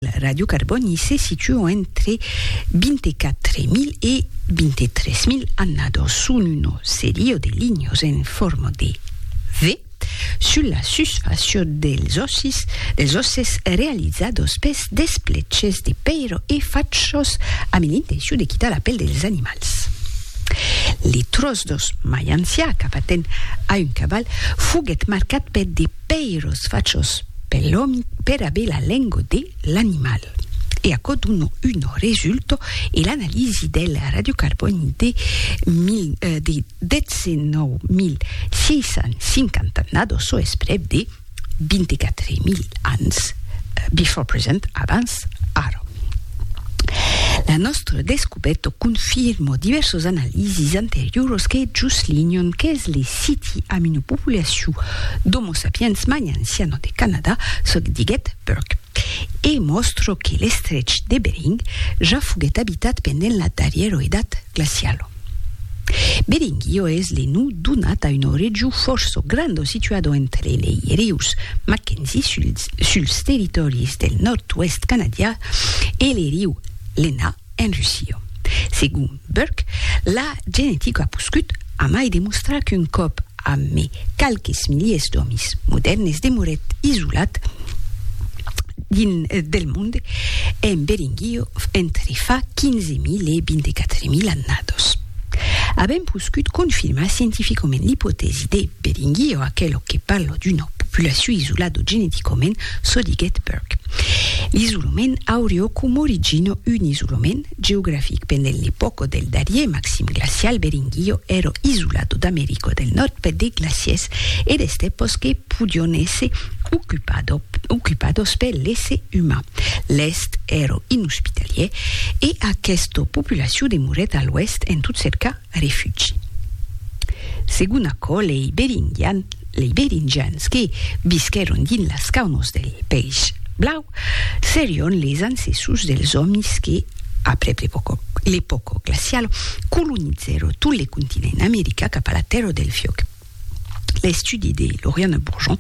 La Ràdio Carbòni se situa entre 24.000 e 23.000 annados son una seria de linhas en forma de V sus la susfàcia dels òssis dels òsses realizados pes despleches de pèira e fachos amb l'intencion de quitar la pèl dels animals. Li tròç d'òs mai ancià qu'apatent a un caval foguèt marcat per de Pèiros fachos per l'òmi pera bela lengo de l'animal. E aquò dona un resulto e l'analisi del radiocarbòni de 19.650 nado, çò es prèp de 24.000 ans, before present, abans, Estadas. Ara, la nòstra descubèta confirma divèrsos analisis anterioras que juslinhan qu'es le siti amb una populacion d'Homo sapiens magnansiana de Canadà, çò que diguèt Burke, e mòstra que l'estrech de Bering ja foguèt abitat pendent la darrièra edat glaciala. Beding, iò es le non donat a una region fòrça granda situada entre lei rius Mackenzie suls, suls territòris del nòrd-oèst canadià e le riu Lena en Russia. Segon Burke, la genetica a poscut amai demostrar qu'un còp Amé qualques miliers d'òmis modèrnes demorèt isolat dins del monde en Beringuio entre fa 15.000 e 24.000 annados. Avèm poscut confirmar scientificament l'ipotèsi de Beringuio, aquelo que parlo d'una populacion isolado geneticament, çò diguèt Burke. L'isolament aurió coma origina un isolament Geografic pendent l'epòca del darrier maxim glacial Beringuio èra isolat d'America del Nòrd per de glaciers e d'estèpas que podion èsser ocupadas per l'èsser uman. L'Èst èra inhospitalièr e aquesta populacion demorèt a l'Oèst en tot cercar a refugi. Segon aquò, lei beringians que visquèron dins las caunos del País Blau serion les ancessos dels òmis que, aprèp l'epòca glaciala, colonizèron tot le continent america cap a la Tèrra del Fiòc. L'estudi de Lauriane Bourgeon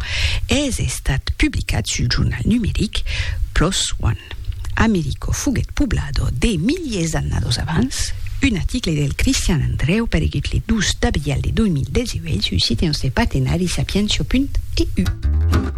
es estat publicat sul jornal numeric Plos One. Americo foguèt poblado de miliers d'annados abans, un article del Cristian Andreu paregut le 12 d'abrial de 2018 sul site nòste partenari sapientia.eu.